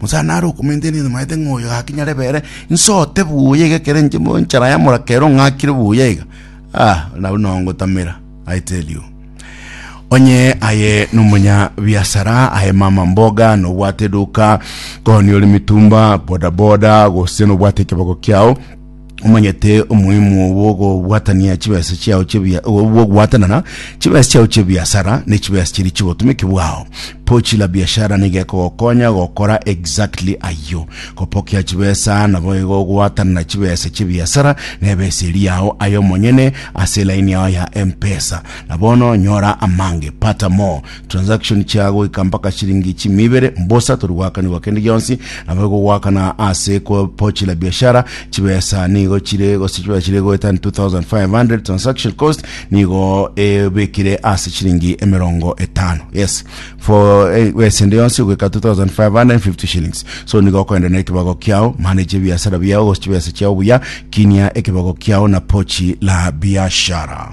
Musa nare okomenteria nyasae ng'a oyo gaki nyarebe ere insote buya iga ekero inche enchara y'amoraka ero ng'akire buya iga ah nabwo nao ngotamera i tell you onye aye nomonya biasara aye mama mboga nobwate eduka koni ore mitumba bodaboda gose nobwate ekeboko kiao omanyete omoimo bw'okobwatania chibesa chiao chebia bw'okobwatanana chibesa chiao chebiasara ne chibesa chiria chigotumiki bwao pochi la biashara niga ekogokonya gokora exactly ayio kopokia chibesa nabo igo ogwatanana chibesa chebiasara na ebesa eri yao ayo omonyene ase elaini yao ya mpesa na bono nyora amange pata more Transaction chia goika mpaka shilingi chimi ibere mbosa tori goakanigwa kende gionsi nabo gogoakana ase ko pochi la biashara chibesa nigo chire gose chibesa chire goeta 2500 transaction cost nigo ebekire ase shilingi emerongo etano yes for eh, wese ende yonsi goika 2550 shillings so nigo okoenda na ekibago kiao manage biashara biao gose chibesa chiao buya kinia ekibago kiao na pochi la biashara